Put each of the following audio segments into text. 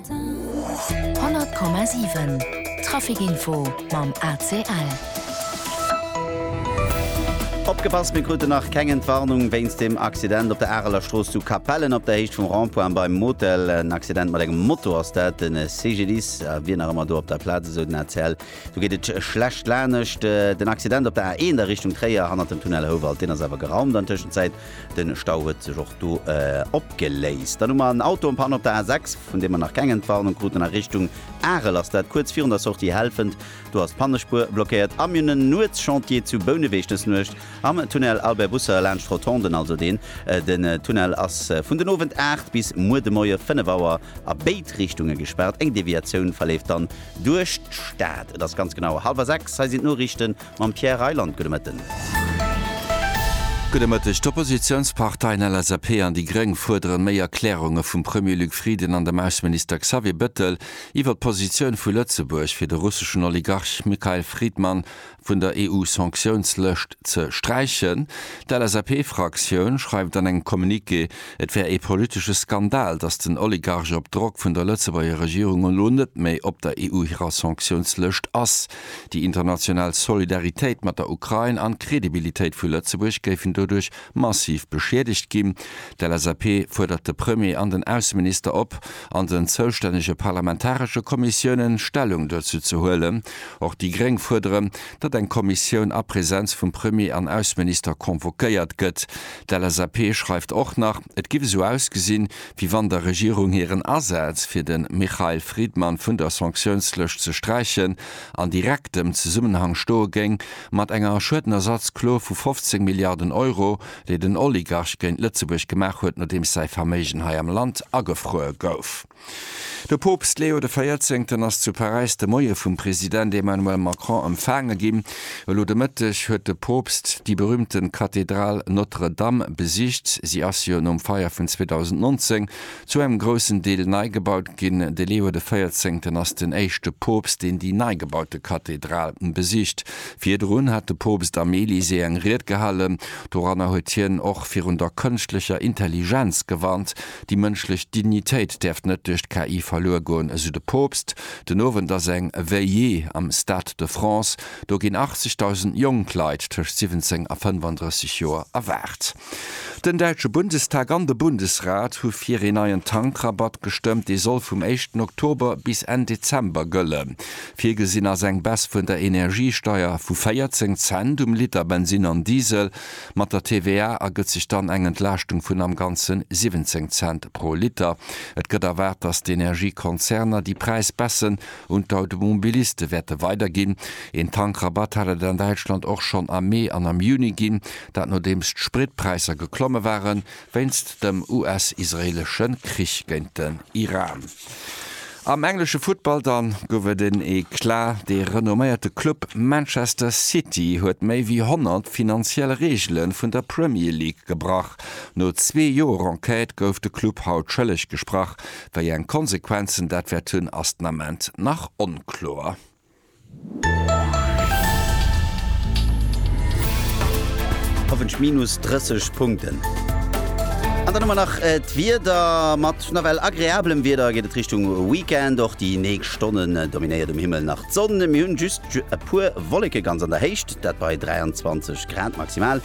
100,7 Trafic Info mam ACL. Opgepasst, mir kruten nach keng Entwarnung wéinst dem Accident op der Areler Strooss zu Capellen op der Héicht vum Rond-point beim Motel. En Accident mat engem Moto ass dat. De CGDIS wier nach ëmmer do op der Plaz, esou den ACL. Do geet et schlecht lanescht. Den Accident op der A1 a Richtung Tréier hannert dem Tunnel Houwald, deen ass awer geraumt an Tëschenzäit. Den Stau huet sech och do opgeléist. Dann hu mer en Auto en panne op der A6, vun deem mer nach keng Entwarnung kruten. A Richtung Arel ass dat kuerz virun der Sortie Helfent. Do ass d'Pannespuer blockéiert. A mir hunn en Nuetschantier zu Bouneweg dës Nuecht am Tunnel Albert Busser laanscht Rotonden, also deen. Den Tunnel ass vun den Owend 8 bis muer de Moie 5 Auer a béid Richtunge gespaart. Eng Deviatioun verleeft dann duerch d'Stad. Et ass ganz genau hallwer 6. Hei sinn d'Noriichten. Mam Pierre Reyland, gudde Mëtten. Gudde Mëtteg. D'Oppositiounsparteien LSAP an déi Gréng fuerderen méi Erklärunge vum Premier Luc Frieden an dem Ausseminister Xavier Bettel iwwer d'Positioun vu Lëtzebuerg fir de russeschen Oligarch Mikhail Fridman vun der EU-Sanktiounslëscht ze sträichen. D'LSAP-Fraktioun schreift an engem Communiqué, et wär ee politesche Skandal, datt den Oligarch op Drock vun der Lëtzebuerger Regierung elo net méi op der EU hirer Sanktiounslëscht ass. Déi international Solidaritéit mat der Ukrain an d'Credibilitéit vu Lëtzebuerg géifen doduerch massiv beschiedegt ginn. D'LSAP fuerdert de Premier an den Ausseminister op, an den zoustännege parlamentaresche Kommissiounen Stellung dozou ze huelen. Och déi gréng fuerderen, datt eng Kommissioun a Presenz vum Premier an Ausseminister convoquéiert gëtt. D'LSAP schreift och nach, et giff esou ausgesinn, wéi wann der Regierung hiren Asaz, fir de Mikhail Fridman vun der Sanktiounslëscht ze sträichen, an direktem Zesummenhang stoe géing mat enger Schuedenersatzklo vu 15 Milliarden Euro, déi den Oligarch géint Lëtzebuerg gemaach huet, nodeems säi Verméigen hei am Land agefruer gouf. De Poopst Leo de Véierzéngten ass zu Paräis de Moie vum President Emmanuel Macron empfaange ginn. Elo de Mëtteg huet de Poopst déi berühmten Kathedral Notre Dame besicht. Si ass jo nom Feier vun 2019 zu engem groussen Deel nei gebaut ginn. De Leo de Véierzéngten ass den éischte Poopst, deen déi nei gebaute Kathedral besicht. Virdrun hat de Poopst am Elysée eng Ried gehalten. Doranner huet hien och virun der kënschtlecher Intelligenz gewarnt. Déi mënschlech Dignitéit däerft net duerch d'KI verluer goen, esou de Poopst. Den Owend ass eng Veillée am Stade de France. Do ginn 80.000 jonk Leit tëscht 17 a 35 Joer erwaart. Den däitsche Bundestag an de Bundesrat hu fir een neien Tankrabatt gestëmmt. Dee soll vum éischten Oktober bis Enn Dezember gëllen. Virgesinn ass eng Baisse vun der Energiesteier vu 14 Cent um Liter Bensin an Diesel. Mat der TVA ergëtt sech dann eng Entlaaschtung vun am Ganze 17 Cent pro Liter. Et gëtt erwaart, dass d'Energiekonzerner déi Präisbaisse un d'Automobiliste wäerte weiderginn. Een Tankrabatt hat et an Däitschland och schonn am Mee an am Juni ginn, dat nodeems d'Spritpräisser geklomme ware wéinst dem US-israeelesche Krich géint den Iran. Am englesche Futtball dann gouf et en Eclat, De renomméierte Club Manchester City huet méi wéi 100 finanziell Reegele vun der Premier League gebrach. No zwee Joer Enquête gouf de Club haut schëlleg gesprach. Wéi eng Konsequenzen dat wäert hunn, ass den Ament nach onkloer. Hoffentlech minus 30 Punkten. An dann hu mer nach äh, d'Wieder. Mat nawell agreablem Wieder geet et Richtung Weekend. Och déi nächst Stonnen äh, dominéiert um Himmel nach d'Sonn. Mir hunn just e puer Wolleke ganz an der Héicht, dat bei 23 Grad maximal.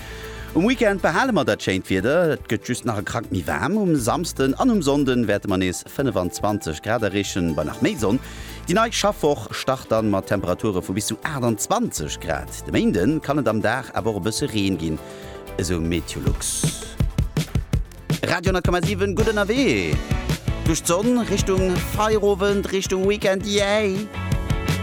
Um Weekend behale mer dat schéint Wieder. Et gëtt just nach e Krack méi waarm. Um Samsden an um Sonnden wäerte mer nees 25 Grad erreechen, bei nach méi Sonn. Déi nei Schaffwoch start dann mat Temperature vu bis zu 28 Grad. De Méinde kann et am Dag awer och e bësse Reen ginn, esou Meteolux. Radio 10,7 gutt ënnerwee duerch d'Sonn Richtung Feierowend, Richtung Weekend, yay!